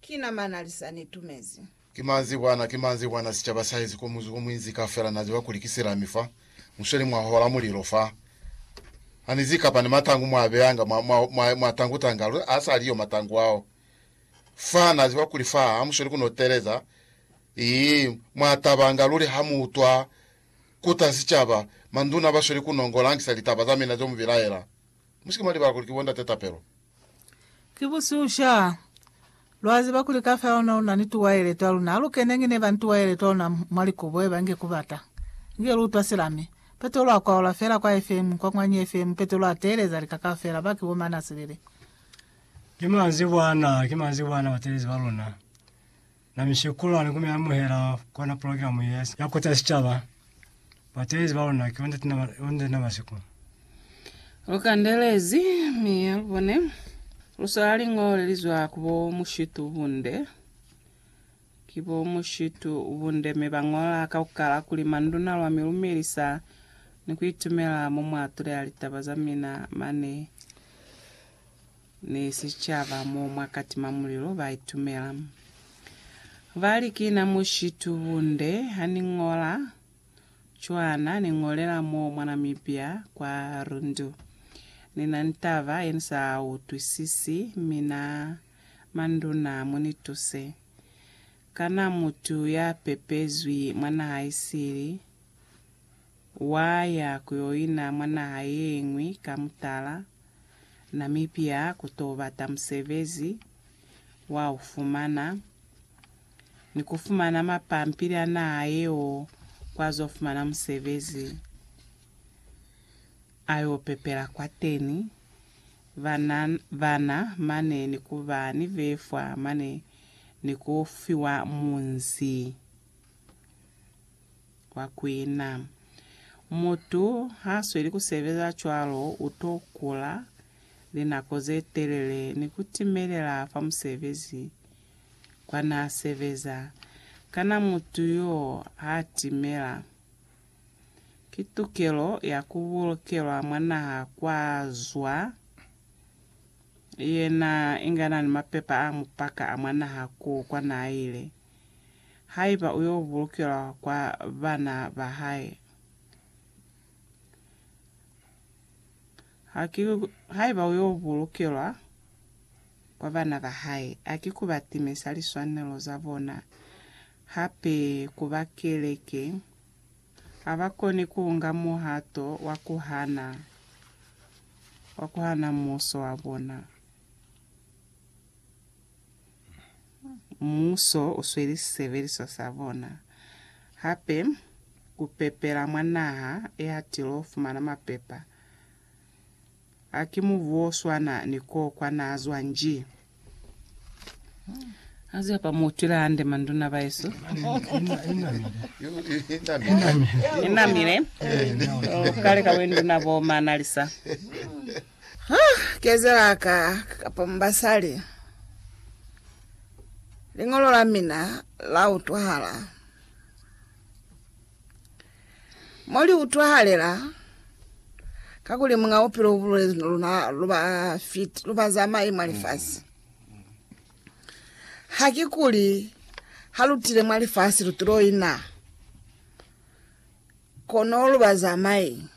Ki na mana li sa ni tumezi. Ki manzi kwana, ki manzi kwana, sicaba sa hezi ko muzuko muinzi ka fela na ziba kuli ki silami fa, musweli mwa hola mulilo fa. Ha ni zi kapa ni matangu mwa beyanga mwa, mwa, mwa, mwa tangu tanga, lu, ha sa li yo matangu ao. Fa, na ziba kuli fa ha musweli ku no teleza. Ii, mwa tabanga luli ha mu utwa kuta sicaba, manduna basweli ku nongo langisa litaba za mina zo mu bilaela. Musike mwa libala kuli ki bo ndate tapelo. Ki busihu sha. Lwa ziba kuli kafa ona lu na ni tuwaele twa luna. Ha lu keneñi ne ba ni tuwaele twa luna mwa likubo, eba inge ku bata. Inge lu utwa silami. Petolo a kwaola fela kwa FM, kwa mwanyi FM, Petolo a teeleza lika kaufela, ba ki bo mana silili. Ki manzibwana, ki manzibwana, batelezi ba luna. Na mishekulu ane kume amuhela kona program ye ya kuta sicaba batelezi ba luna ki onde tina onde na masiku. Lu kandelezi mi lu bone lu swala lingole li zwa ku bo mushitu bunde. Ki bo mushitu bunde mi ba ngola kaukala kuli manduna lwa mi lumelisa ni ku itumela mo mwa tuleha litaba za mina mane ni sicaba mo mwa katima mulilo ba itumela. Ba li, Ki na mushitu bunde ha ni ñola cwana ni ñolela mo mwa Namibia kwa Rundu. Ni na ni taba ye ni sa utwisisi, mi na manduna mu ni tuse. Kana mutu ya pepezwi mwa naha isili wa ya ku yo ina mwa naha ye ñwi ka mutala? Namibia ku to bata musebezi wa u fumana ni ku fumana mapampili a naha yeo kwa zo fumana musebezi a yo pepela kwateni, bana, bana mane ni ku ba ni befwa mane ni ku fiwa munzi. kwa kuina. Mutu ha sweli ku sebeza cwalo u to kula linako ze telele ni ku timelela fa musebezi kwa n'a sebeza. Kana mutu y'o ha timela? Ki tukelo ya ku bulukelwa mwa naha kwa zwa yena inga n'a ni mapepa a mupaka a mwa naha k'o kwa n'a ile. haiba u yo bulukelwa kwa bana ba hae. Ha ki, haiba u yo bulukelwa kwa bana ba hae, ha ki ku ba timisa liswanelo za bona, hape ku ba keleke. Ha ba koni ku nga muhato wa ku hana, wa ku hana muuso wa bona. Muso u sweli sisebeliswa sa bona hape ku pepela mwa naha ye hatilo fumana mapepa. Ha ki mubu o swana ni koo kwa na zwa nji. Aze apa mu utwile hande manduna baesu. Inamile. Kale ka wenduna bo ma analisa. Ha kezela ka kapa mu basali, liñolo la mina la utwahala. Mo li utwahalela, kakuli Muñ'a Bupilo ubulezi no luna lu ba fit, lu ba zamai mwa lifasi. Hakikuli ha lu tile mwa lifasi lu tulo ina, kono lu ba zamai.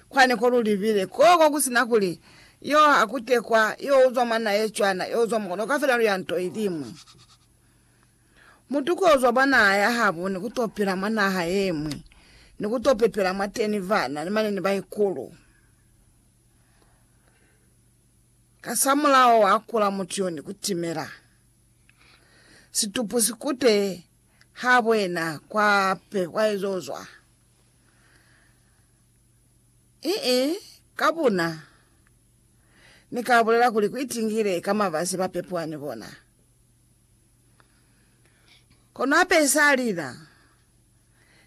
Kwani ko lu libile, koko ku si na kuli, Yo a kute kwa, yo uzwa mwa na ye cwana, yo uzwa mwa kona, ka fela lu ya nto ilimwi. Mutu ko uzwa bwa naha ya habo ni ku to pila mwa naha yemwi, ni ku to pepela mwateni vana ni mane ni baikulu. Kasamulaho wa kula mutu yo ni ku timela. Situpu si kute habo yena kwa pe, kwa ezo uzwa. Ii, Ka buna, ni ka bulela kuli ku itingile ka mabasi ba pepwa ni bona. Kono hape isalila,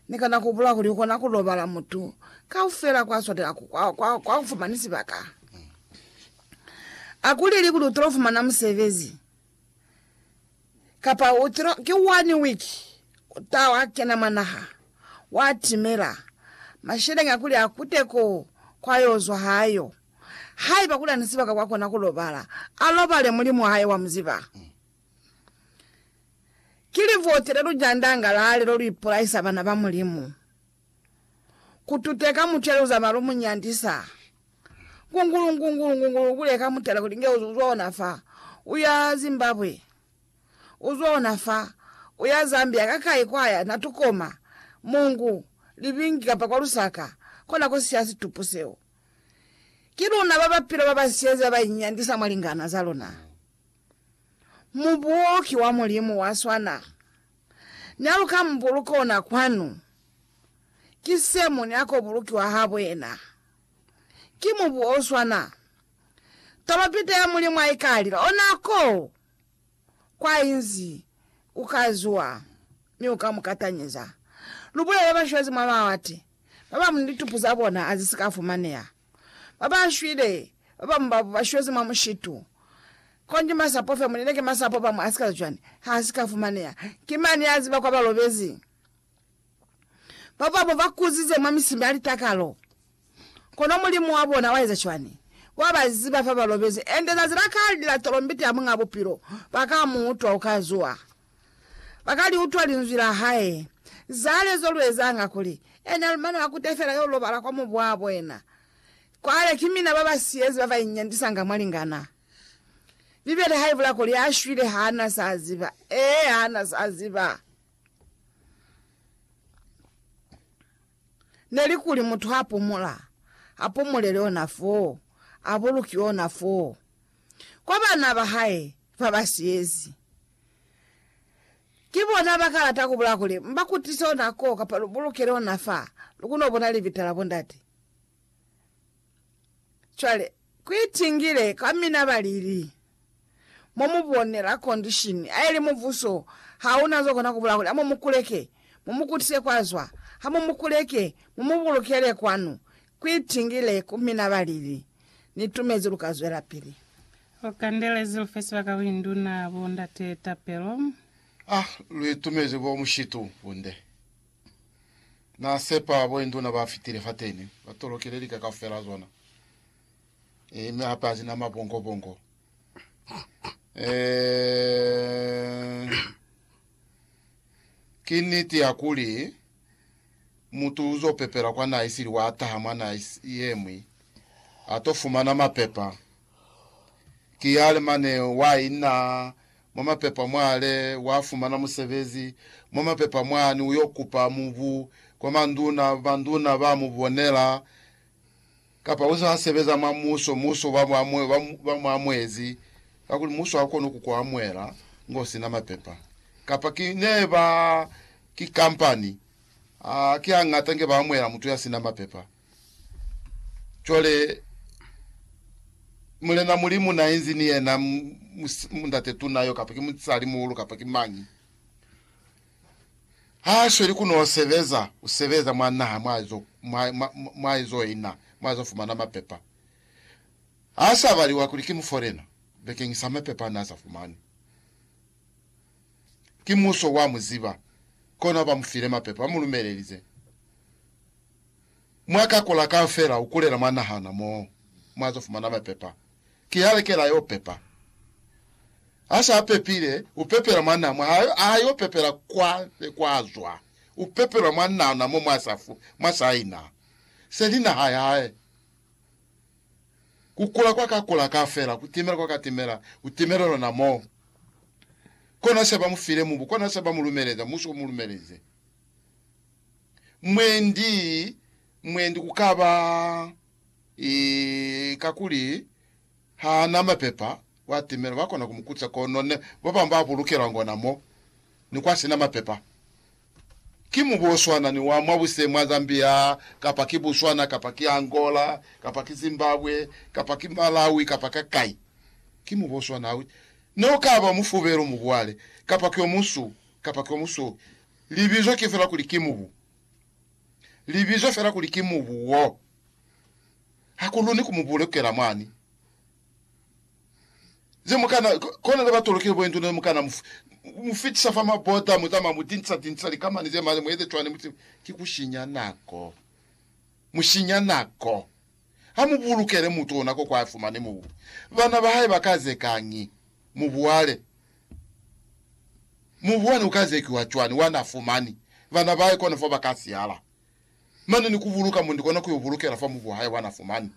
ni kona ku bula kuli u kona ku lobala mutu kaufela kwa swatela ku, kwa, kwa, kwa kufumani sibaka. Akuleli kuli utolo fumana musebezi. Kapa u tilo ki one week u ta wa kena mwa naha, wa timela masheleña kuli a kute ko kwa yo zwa hayo. Haiba kuli ani sibaka kwa kona ku lobala, a lobale Mulimu wa hae wa mu ziba. Ki livote le lu jandanga la lelo lu ipolaisa bana ba Mulimu. Ku tute ka mucelu za malu mu nyandisa. Ngungulu, ngungulu, ngungulu, ku leka mutala kuli nge u zwa ona fa. U ya Zimbabwe. U zwa ona fa. U ya Zambia, ka kai kwa ya, na tukoma, Mungu, Libingi kapa kwa Lusaka, kona ko siya situpu seo. Ki luna ba bapilo ba ba siyezi ba ba inyandisa mwa lingana za luna. Mubuki wa Mulimu wa swana n'a luka mubuluki ona kwanu, ki se mu nyako bulukiwa habuena. Ki mubu o swana. Taba pite ya Mulimu ha i ka lila, ona ko kwa inzi u ka zuwa mi u ka mu katanyeza. Lu bulele bashwezi mwa mawate ba bañwi litupu za bona ha zi si ka fumaneha. Ba ba shwile ba ba mubabo ba shwezi mwa mushitu. Konji masapo fe, muleleke masapo ba mwa sika cwani, ha si ka fumaneha. Ki mani ya ziba kwa ba lobezi? Ba babo ba kuzize mwa misimi ya litakalo. Kono Mulimu wa bona wa eza cwani? Wa ba ziba fa ba lobezi, ende zazi la kale ni la tolombiti ya Muñ'a Bupilo ba ka mu utwa u ka zuha. Ba ka li utwa linzwi la hae. Cwale zo lu ezanga kuli, ena lu mane wa kute fela yo lobala kwa mubwabo ena. Cwale ki mina ba ba siyezi ba ba inyandisanga mwa lingana. Bibele ha i bula kuli a shwile ha na sa ziba. Ee, ha na sa ziba. Ne li kuli mutu ha pumula, a pumulele ona foo, a bulukiwe ona foo, kwa bana ba hae ba ba siyezi. Ki bona ba kalata ku bulaya kuli mba kutise ona ko kapa lu bulukele ona fa lu kono bona libita la bondate. Cwale, ku itingile kwa mina ba lili. Mo mu bone la condition, ha ili mubuso ha una zo kona ku bulaya kuli ha mu mu kuleke, mu mu kutise kwa zwa, ha mu mu kuleke, mu mu bulukele kwanu. Kuitingile ku mina ba lili, Ni tumezi lu ka zwelapili. Lu kandelezi lu fe sibaka ku induna bo ndate tapelo. A lu itumezi bo mushitu bunde. Na sepa bo induna ba fitile fateni, ba tolokile lika kaufela zona, ee, mi hape hazina mabongobongo, ee, ki niti ya kuli. mutu uzo pepela kwa naha isili wa taha mwa naha yemwi ato fumana mapepa. Ki yale mane wa ina mwa mapepa mwale wa fumana musebezi mwa mapepa mwani uyo kupa mubu kwa manduna, banduna ba mu bonela. Kapa uze wa sebeza mwa muso, muso ba mu amuezi ka kuli muso ha ukoni ku ku amuela ngo sina mapepa. Kapa ki neba, ki kampani, ha ki hangata nge ba amuela mutu ya sina mapepa. Cwale, Mulena Mulimu na inzi ni yena, Mundate Tuna yo, kapa ki musali muhulu, kapa ki mañi. Ha a sweli ku n'o sebeza, u sebeza mwa naha mwa zo, mwa, mwa, mwa ezo ina, mwa zo fumana mapepa. Ha sa baliwa kuli ki mufolena, bekeñisa mapepa a n'a sa fumani. Ki muso wa mu ziba, kono ha ba mu file mapepa, ba mu lumelelize. Mwa ka kula ka fela ukulela mwa nahana mo mwa zo fumana mwa pepa. Ki ha lekela yo pepa. Ha sa pepile, u pepela mwa na, mwa ha, ha yo pepela kwa ne kwa zwa. U pepelwa mwa nahana mo mwa sa fu, mwa sa ina. Se li naha ya hae. Ku kula kwa ka kula ka fela, ku timela kwa ka timela, ku timela lona mo. Kona se ba mu file mubu, kona se ba mu lumeleza, musu o mu lumeleze. mwendi, mwendi ku ka ba i, kakuli ha na mapepa, wa timela, ba kona ku mu kuca, kono ne ba bambe ba bulukelwa ngona mo, ni kwa sina mapepa. Ki mubu o swana ni wa mwa buse mwa Zambia, kapa ki Botswana, kapa ki Angola, kapa ki Zimbabwe, kapa ki Malawi, kapa ka kai. Ki mubu o swana. Ha u, ne u ka ba mufubelu, mubu wale, kapa ki o munsu, kapa ki o musweu, Libizo ki fela kuli ki mubu. Libizo fela kuli ki mubu wo. Ha ku luni ku mubule kukela mwani. Ze mu kana, kona ze ba tolokile bo induna ze mu kana mu, mu fitisa fa mabota, mu zama mu dinsa, dinsa likamani ze mali, mu eze cwani, mu si, ki ku sinya nako. Mu sinya nako. Ha mu bulukele mutu ona ko kwa fumani mubu. Bana ba hae ba ka ze kañi? Mu buale. Mubwani uka zekiwa cwani wa na fumani bana bahae kono fo ba ka sihala? Mane ni ku buluka mundi kona ku yo bulukela fa mubu wa hae wa na fumani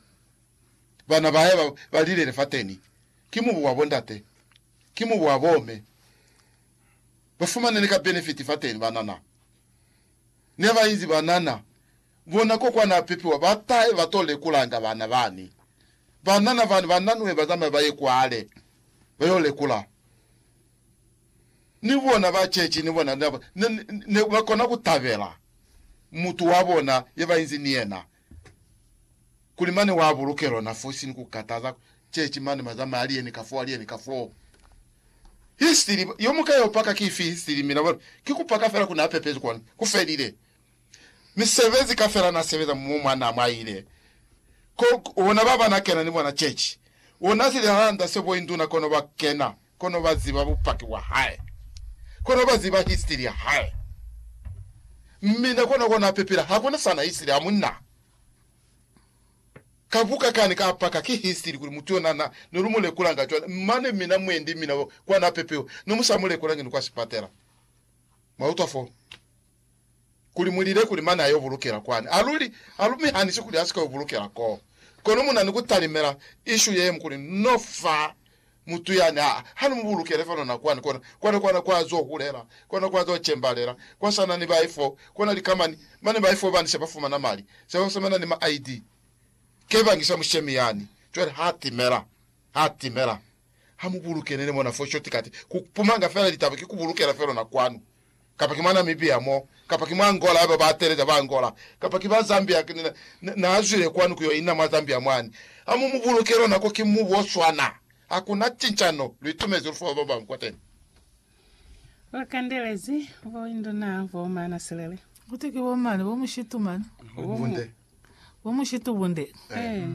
bana ba hae ba ba lilele fateni. Ki mubu wa bo ndate, ki mubu wa bo me. Ba fumane ni ka benefiti fateni banana. Ne ba inzi banana. Bona ko kwa na pipiwa ba tahe ba to lekulanga bana bani. Banana bani ba nanwe ba zamaye ba ye kwale ba yo lekula. Ni bona ba chechi ni bona ne, ne, ne ba kona ku tabela mutu wa bona ye ba inzi ni yena kuli mane wa buluke lona fosi ni ku kataza chechi mane ba zamaya ali yeni ka fo, ali yeni ka fo. Histiri, yo muka yo paka ki ifi histiri? Mina bona ki ku paka fela ku na pepezi kona ku felile. misebezi kafela na sebeza mumu mwa na mwaile ko ona baba na kena ni bona chechi ona si lihanda se bo induna kono ba kena kono ba ziba bupaki bwa hae kono ba ziba history ya hae mmina kona kona pepela hakuna sana history ha munna ka buka kani ka paka ki history kuli mutu yona na no lu mulekula nga chwale mane mina mwendi mina kwa na pepewa no musa mulekula ngi ni kwa sipatela mwa utwa fo kuli mu lile kuli mane a yo bulukela kwani. A luli, a lu mi hanisi kuli a si ka yo bulukela koo. Kono mu na ni ku talimela ishu ye ñwi kuli, No fa mutu yani, ha, ha ni mu bulukele fano na kwani, kona, kona, kona kwa zo hulela, kona kwa zo cembalela, kwa sa na ni bai fo, kona likamani, mane bai fo bani se ba fumana mali, se ba fumana ni ma ID. Ke bangi sa mushemi yani. Cwale ha timela, ha timela. Ha mu bulukele ni mona fo shortcut, ku pumanga fela litaba ki ku bulukela felo na kwanu. kapa ki mwa Namibia mo, kapa ki mwa Angola haiba ba teeleza ba Angola, kapa ki ba Zambia, na, na zwile kwanu kuyo ina mwa Zambia mwani, ha mu mu buluke lwa nako ki mubu o swana. Hakuna cincano, lu itumezi lu fa ba babañwi kwateni. Lu kandelezi bo induna bo maana silele. Kuti ki bo mani, bo mushitu mani? Bo mu, bo mushitu bunde. Ee.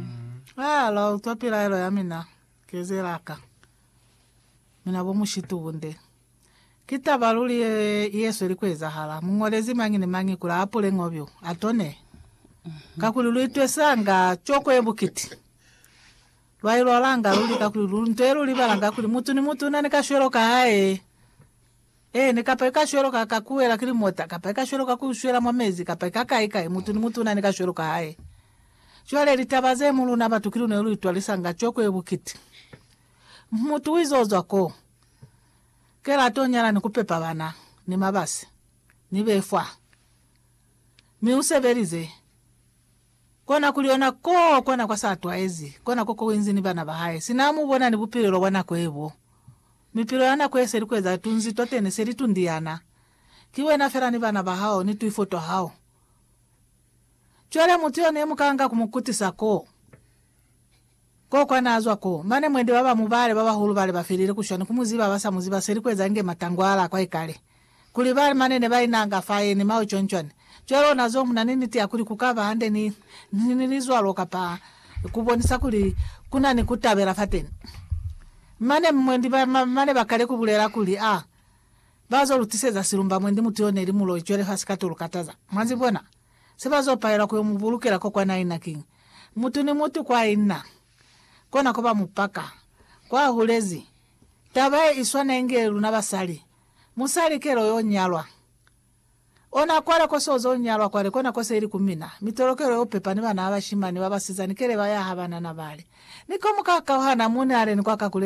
Aa, lwa utwa pilaelo ya mina. Kezela ka. Mina bo mushitu bunde. Ki taba luli ye yesweli kuezahala. Muñolezi mañi ni mañi kuli ahapule ngo byo, atone. Kakuli lu itwesanga coko ye bukiti. Lwa ilwalanga luli kakuli lu nto ye lu libalanga kuli mutu ni mutu una ni kashwelo ka hae. Eeni, kapa i ka shwela ka ka kuwela ki limota, kapa i ka shwela ka ku shwela mwa mezi, kapa i ka kai kai, mutu ni mutu una ni ka shwelo ka hae. Cwale litaba ze mu luna batu ki lu ne lu itwalisa nga cweko ye bukiti. Mutu wize ozwa ko, kela ato nyala ni ku pepa bana, ni mabasi, ni befwa. Mi usebelize, Kona kuli ona ko kona kwa sa twaezi, kona ko ko inzi ni bana ba hae, sina amu bona ni bupilelo bwa nako ye bo. Mipilelo ya nako ye se li kueza tunzi twateni se li tundiana. Ki wena fela ni bana ba hao ni twifo twa hao. Cwale mutu yone muka nga ku mu kutisa ko. Koko naazwa ko, mane mwendi baba mubale babahulu bale bafelile kushwani kumuziba abasamuziba seli kueza inge matangwala akwa ikale. Kuli bali mane nebainanga faye ni mao cwancwani. Cwale onazo muna ni niti yakuli kukaba hande ni, ni, ni lizwalo kapa kubonisa kuli kuna ni kutabela fateni. Mane mwendi ba, ma, mane bakale kubulela kuli, Ah, bazo lutiseza silumba mwendi mutu yo neli muloi cwale fa sikatolukataza. Mwazibona? Se ba zo pahelwa ku yo mu bulukela ko kwa naina kiñi? Mutu ni mutu kwa i na, kona ko ba mu paka. Kwa hulezi, taba ye i swana inge luna basali. Musali ke lo yo nyalwa. Ona kwale ko so zo nyalwa kwale, kona ko se li ku mina. Mitolo ke lo yo pepa ni bana ba bashimani, ba basizani kele ba yaha banana bale. Ni ko mu ka kauhana, mu ni aleni kwa ka ku lelekela.